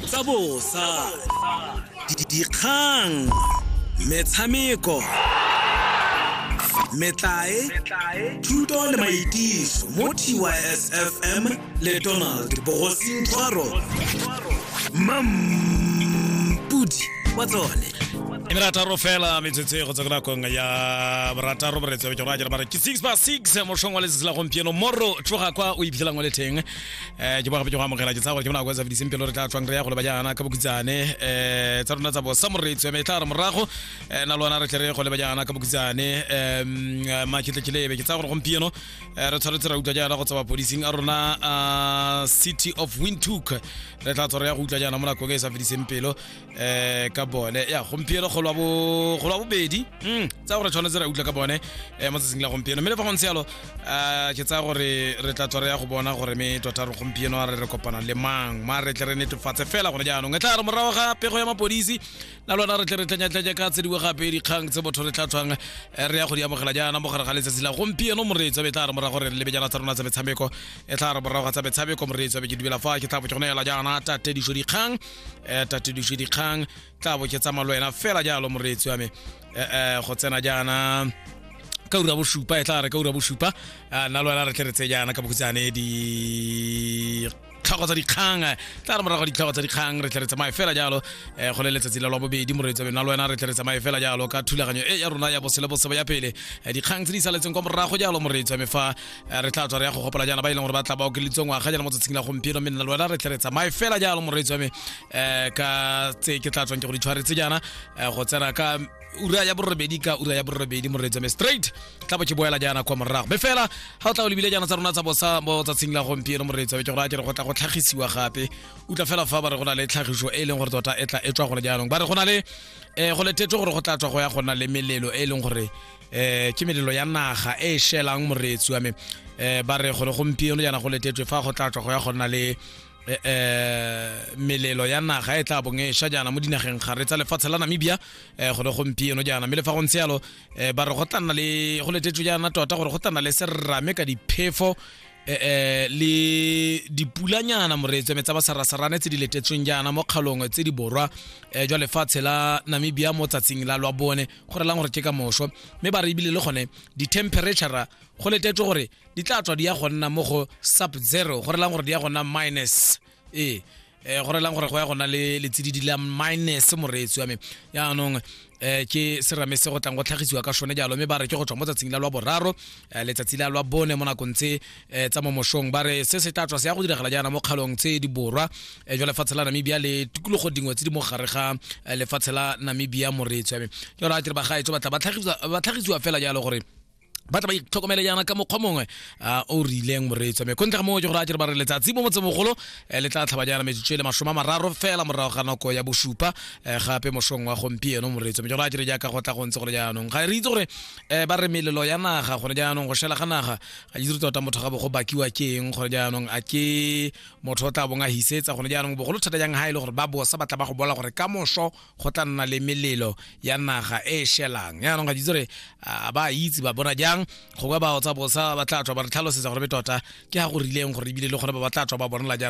tsa bosa dikgang metshameko metlae thuto le maitiso mo tysfm le donald bogosi tshwaro mampudi wa tsone e merataro fela metsotso e go tswa ka nakong ya borataro boretsa bja gore a jera bare ke six ba six mošong wa letsatsi la gompieno moro tloga kwa o iphitlhelang o le teng eh ke bogape ke go amogela ke tsa gore ke bonako tsa fediseng pelo re tla tswang re ya go leba jaana ka bokutsane eh tsa rona tsa bosa moreetsi me tla re morago eh na lona re tle re go leba jaana ka bokutsane eh ma ke tle ke lebe ke tsa gore gompieno eh, re tshwanetse ra utlwa jaana go tsa policing a rona ah, city of windhoek re tla tswa re ya go utlwa jaana mo nakong e sa fediseng pelo eh ka bone ya gompieno go lwa bo go lwa bobedi mm, tsa gore tshwanetse ra utlwa ka bone eh mo tsatsing la gompieno mme le fa go ntse yalo eh ke tsaya gore re tla tswa re ya go bona gore me tota re gompieno a re re kopana le mang ma re tle re netefatse fela gone jaanong e tla re morago ga pego ya mapodisi la lona re tle re tlenyatlenya ka tse dingwe gape dikgang tse botho re tla tswang eh, re ya go di amogela jaana mo gare ga letsatsi la gompieno moreetsa be tla re morago re lebejana tsa rona tsa metshameko e tla re morago ga tsa metshameko moreetsa be ke dumela fa ke tla bo ke gone yala jaana tate diso dikgang eh, tatedišo dikgang tla bo ke tsa malwena fela jalo moreetsi wa me eh, eh, go tsena jaana ka ura bosupa e tla re ka ura bosupa eh, nna le wena re tle re tse jaana ka bokhutshane di ditlhogo tsa dikgang eh, tla re morago ditlhogo tsa dikgang re tle re tsamaye fela jalo eh, go le letsatsi la lwa bobedi moreetsi bena le wena re tle re tsamaye fela jalo ka thulaganyo e ya rona ya bosele bosebo ya pele eh, dikgang tse di saletseng kwa morago jalo moreetsi wa me fa Eh, re tla tswa re ya go gopola jaana ba e leng gore ba tla ba okeleditse ngwaga jaana mo tsatsing la gompieno mme nna le wena re tle re tsamaye fela jalo moreetsi wa me um ka tse ke tla tswang ke go di tshwaretse jaana eh, go tsena ka ura ya borobedi ka ura ya borobedi moreetsi wa me straight tla bo ke boela jaana kwa morago mme fela ga o tla o lebile jaana tsa rona tsa bosa mo tsatsing la gompieno moreetsi wa me ke gore a ke re go tla go tlhagisiwa gape utla fela fa ba re go na le tlhagiso e e leng gore tota e tla e tswa gone jaanong ba re go na le um go letetswe gore go tla tswa go ya go na le melelo e e leng gore eh ke melelo ya naga e e shelang moreetsi wa me eh ba re go le gompieno jaana go letetswe fa go tla tswa go ya go nna le eh, eh melelo ya naga e tla bong e sha jaana mo dinageng ga re tsa lefatshe la namibia eh go le gompieno jaana mme le fa go ntse yalo eh ba re go tla nna le go letetswe jaana tota gore go tla nna le serame ka diphefo eh, eh le dipulanyana moreetso metsa ba sarasarane tse di letetsweng jaana mo kgalong tse di borwa eh, jwa lefatshe la namibia mo tsatsing la lwa bone go relang gore ke ka moso mme ba re ebile le gone di-temperature go letetswe gore di tla tswa di ya go nna mo go sub zero go relang gore di ya go nna minus ee um go relang gore go ya go na le letsididi la minus moreetsi wa me yaanong um ke serame se go tlang go tlhagisiwa ka sone jalo mme ba re ke go tswa mo tsatsing la lwa boraro um letsatsi la lwa bone mo nakong tse eh, tsa mo mošong ba re se se tla tswa se ya go diragala jaana mo kgalong tse di borwa eh, jwa lefatshe la namibia le tikologo dingwe tse di mo gare ga eh, lefatshe la namibia moreetswa me ke gore a kere bagaetso batla ba tlhagisiwa- ba tlhagisiwa fela jalo gore ba tla ba itlhokomele jaana ka mokgwa mongwe ah, o rileng moreetswa me kontle ga moo ke gore a kere ba re letsatsi mo motsemogolo eh, le tla tlhaba jaana metsotso e le masome a mararo fela morago ga nako ya bosupa eh, gape mosong wa gompieno moreetswa me ke gore a kere jaaka go tla go ntse gore jaanong ga re itse gore eh ba re melelo ya naga gore jaanong go shela ga naga ga itse tota motho ga bo go bakiwa ke eng gore jaanong a ke motho o tla bong a hisetsa gore jaanong bogolo thata jang ha ile e gore ba bosa ba tla ba go bola gore ka moso go tla nna le melelo ya naga e shelang jaanong ga itse re a ba itse ba bona jang go ba ba otsa bosa ba tla tswa ba re tlhalosetsa gore be tota ke ha go rileng gore ebile le gore ba ba tla tswa ba bonela jana